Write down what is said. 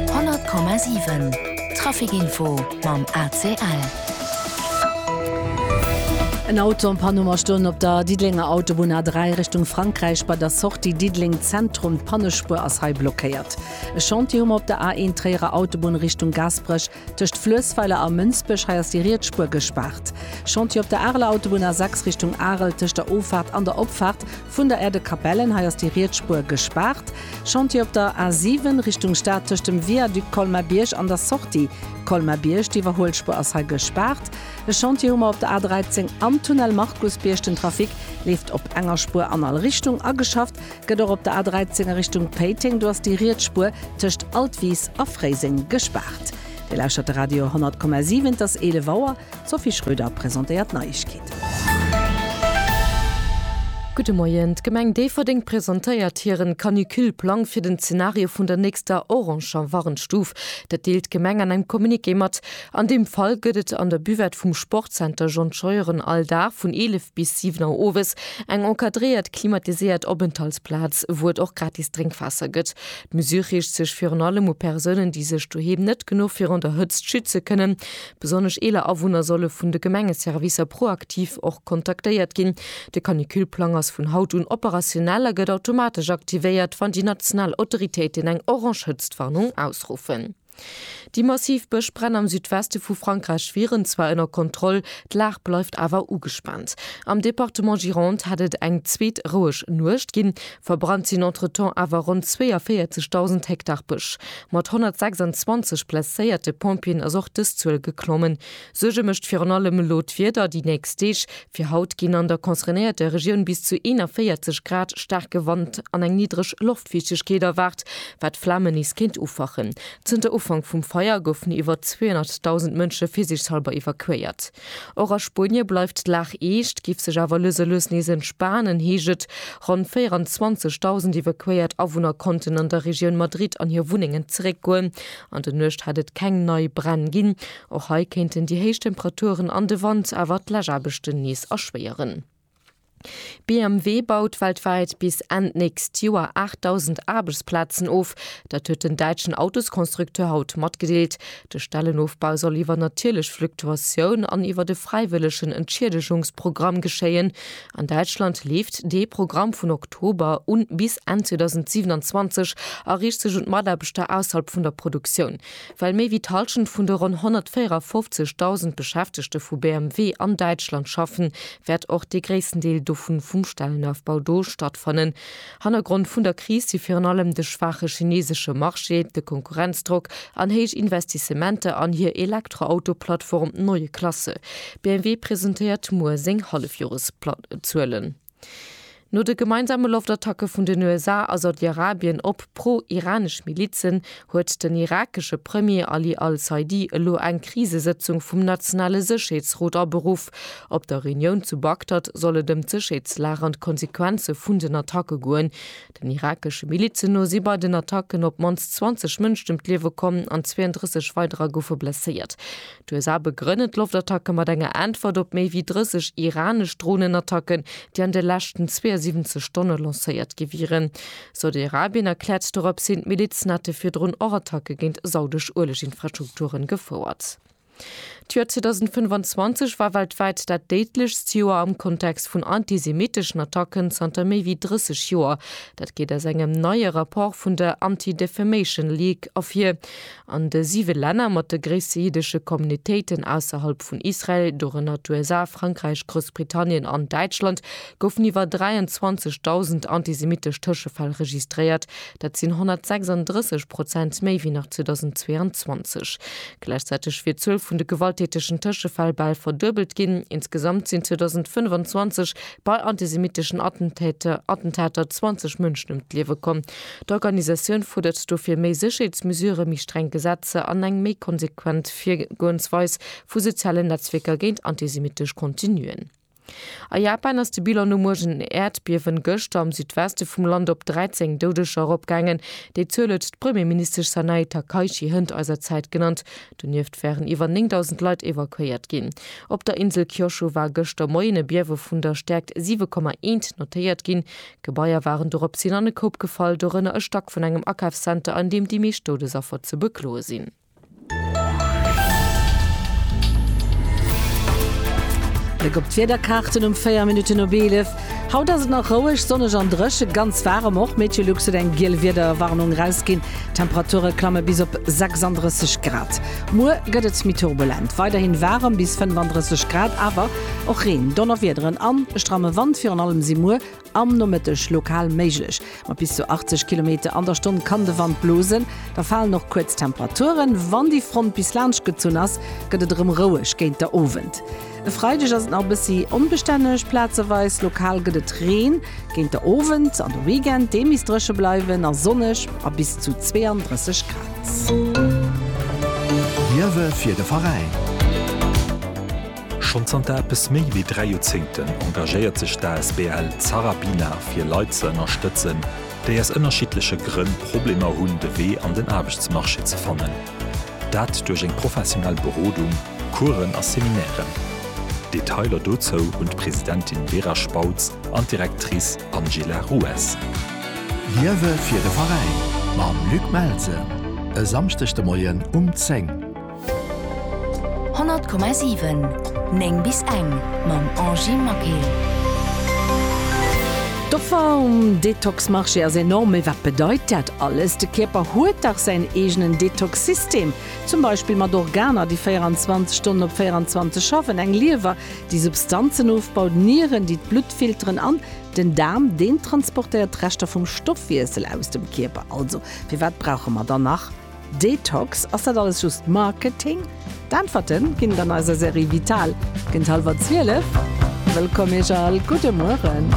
100,7 Trafic-Info mam ACL. En Auto an Panne ma stoen op der Diddelenger Autobunn A3 Richtung Frankräich bei der Sortie Diddeleng Zentrum. D'Pannespuer ass hei blockéiert. E Chantier hu mer op der A1 Tréierer Autobunn Richtung Gaasperech. Tëscht Fluessweiler a Mënsbech, hei ass déi Rietsspuer gespaart. Chantier op der Areler Autobunn A6 Richtung Arel, tëscht der Offaart an der Opfaart vun der Erdekapellen, hei ass déi Rietsspuer gespaart. Chantier op der A7 Richtung Stad, tëscht dem Viaduc Colmar-Bierg an der Sortie Colmar-Bierg, d'Iwwerhuelspuer ass hei gespaart. E Chantier hu mer op der A13 am Tunnel Markusbierg, den Trafic leeft op enger Spuer an all Richtung ageschafft. Gëtt och op der A13 a Richtung Péiteng, do ass déi riets Spuer tëscht Altwis a Fréiseng gespaart. Dir lauschtert de Radio 100,7, et ass 11 Auer. D'Sophie Schröder presentéiert d'Neiegkeeten. Gudde Moien. D'Gemeng Déifferdeng presentéiert hiren Canicule-Plang fir den Zenario vun der nächster oranger Warnstuf. Dat deelt d'Gemeng an engem Communiqué mat. An deem Fall gëtt et an der Buvette vum Sportzenter John Scheuren all Dag vun 11 bis 7 Auer owes eng encadréiert, klimatiséiert Openthaltsplaz, wou et och gratis Drénkwaasser gëtt. D'Mesure riicht sech virun allem u Persounen, déi sech doheem net genuch virun der Hëtzt schütze kënnen. Besonnesch eeler Awunner solle vun de Gemengeservicer proaktiv och kontaktéiert ginn. De Canicule-Plang ass vun haut un operationell a gëtt automatesch aktivéiert, wann déi national Autoritéiten eng orange Hëtztwarnung ausruffen. Déi massiv Bëschbränn am Südweste vu Frankräich wieren zwar ënner Kontroll, d'Lag bleift awer ugespaant. Am Departement Gironde hätt et eng zweet roueg Nuecht ginn. Verbrannt sinn entretemps awer ronn 42.000 Hektar Bësch. Mat 126 blesséierte Pompjeeën ass och dës Zuel geklommen. Suerge mécht virun allem elo d'Wieder déi nächst Deeg. Fir haut ginn an der concernéierter Regioun bis zu 41 Grad, staarke Wand an eng niddreg Loftfiichtegkeet erwaart, wat Flamen nees kéint ufachen. Zënter Ufank vum Feier goufen iwwer 200.000 Mënsche virsiichtshallber evakuéiert. Och a Spuenie bleift d'Lag eescht, géif sech awer lues a lues nees entspanen, heescht et. Ronn 24.000 evakuéiert Awunner konnten an der Regioun Madrid an hir Wunnengen zeréckgoen. An der Nuecht hat et keng nei Bränn ginn. Och hei kéinten déi héich Temperaturen an de Wand awer d'Läschaarbechten nees erschwéieren. BMW baut weltwäit bis Enn d'nächst Joer 8.000 Aarbechtsplazen of. Dat huet den däitschen Autosconstructeur haut matgedeelt. De Stellenofbau soll iwwer natierlech Fluktuatioun an iwwer e fräiwëllegen Entschiedegungsprogramm geschéien. An Däitschland leeft dee Programm vun Oktober un bis Enn 2027 a riicht sech un d'Mataarbechter ausserhalb vun der Produktioun. Well méi wéi d'Hallschent vun de ronn 154.000 Beschäftegte vu BMW an Däitschland schaffen, wäert och dee gréissten Deel dovun vum Stellenaufbau do stattfannen. Hannergrond vun der Kris si virun allem de schwaache chineesesche Marché, de Konkurrenzdrock an héich Investissementer an hir Elektroauto-Plattform Neue Klasse. BMW presentéiert muer seng Hallefjoreszuelen. No de gemeinsame Loftattacke vun den USA a Saudi-Arabien op pro-iranesch Milizen huet den irakesche Premier Ali al-Saidi elo eng Krisesëtzung vum nationale Sécherheetsrot aberuff. Op der Reunioun zu Bagdad soll et ëm d'Sécherheetslag an d'Konsequenze vun den Attacke goen. Den irakesche Milizen no si bei den Attacken op d'mannst 20 Mënschen ëm d'Liewe komm an 32 weiderer goufe blesséiert. D'USA begrënnen d'Loftattacke mat enger Äntwert op méi wéi 30 iranesch Dronenattacken, déi an de leschten 72 Stonne lancéiert gi wieren. Saudi-Arabien erkläert dorops hin, d'Milizen hätte virdrun och Attacke géint saudesch Ueleginfrastrukture gefouert. D'Joer 2025 war weltwäit dat déidlechst Joer am Kontext vun antisemitteschen Attacken zanter méi wéi 30 Joer. Dat geet aus engem neie Rapport vun der Anti-Defamation League ervir. An de siwe Länner mat de gréisste jiddesche Communitéiten ausserhalb vun Israel, dorënner d'USA, Frankräich, Groussbritannien an Däitschland, goufen iwwer 23.000 antisemittesch Tëschefäll registréiert. Dat sinn 136 Prozent méi wéi nach 2022. Gläichzäiteg wier d'Zuel vun de gewalttätegen Tëschefäll bal verduebelt ginn. Insgesamt sinn 2025 bei antisemitteschen Attentäter Attentater 20 Mënschen ëm d'Liewe komm. D'Organisatioun fuerdert dofir méi Sécherheetsmesurë, méi streng Gesetzer an eng méi konsequent Virgoensweis vu sozialen Netzwierker géint antisemittesch Contenuen. A Japan ass de Bilan nom uergen Äerdbiewen gëschter am Südweste vum Land op 13 Doudeger eropgaangen. Déi Zuel huet d'Premierministesch Sanae Takaichi Hënt eiser Zäit genannt. Donieft waren iwwer 9.000 Leit evakuéiert ginn. Op der Insel Kyoshu war gëschter Moien e Biewe vun der Stäerkt 7,1 notéiert ginn. Gebaier waren doropshin an e Koup gefall, dorënner e Stack vun engem Akafszenter, an deem déi meescht Doudesaffer ze bekloe sinn. Bléck op d'Wiederkaarten um 4 Minutten op 11. Haut ass et nach roueg, sonneg an dréche, ganz waarem och. Meteolux huet eng giel Wiederwarnung erausginn. D'Temperature klamme bis op 36 Grad. Muer gëtt et méi turbulent, weiderhin waarem bis 35 Grad, awer och Reen, Donnerwiederen an e stramme Wand. Virun allem si muer Am Nomëtteg lokal méiglech mat bis zu 80 Kilometer an der Stonn kann de Wand blosen, da falen och kuerz Temperaturen. Wann déi Front bis laanscht gezunn ass, gëtt et erëm roueg géint der Owend. E Freideg ass et nach e bëssi onbestänneg plazeweis, lokal gëtt et Reen géint der Owend an de Weekend dee misst dréche bleiwen a sonneg a bis zu 32 Grad. Liewe fir de Veräin! Schonn zanter eppes méi wéi dräi Joerzéngten engagéiert sech d'asbl Zarabina fir Leit ze ënnerstëtzen, déi aus ënnerschiddleche Grënn Problemer hunn de Wee an den Aarbechtsmarché ze fannen. Dat duerch eng professionell Berodung, Coursen a Seminairen. Detailer dozou hunn d'Presidentin Vera Spautz an d'Directrice Angela Rues. Liewe fir de Veräin mam Luc Melsen e Samschdeg de Moien um 10. 100,7 9 bis eng mam Angie Maquet. D'Offer um Detox-Marché ass enorm. Mee wat bedeit dat alles? De Kierper huet dach säin eegenen Detox-System, zum Beispill mat Organer, déi 24 Stonnen op 24 schaffen, eng Liewer, déi Substanzen ofbaut, Nieren, déi d'Blutt filteren, an den Daarm, deen transportéiert d'Reschter vum Stoffwiessel aus dem Kierper. Also firwat brauche mer dann nach Detox, ass dat alles just Marketing? D'Äntwerte ginn et an eiser Serie Vital géint hallwer 12. Wëllkomm Iech all, gudde Mueren.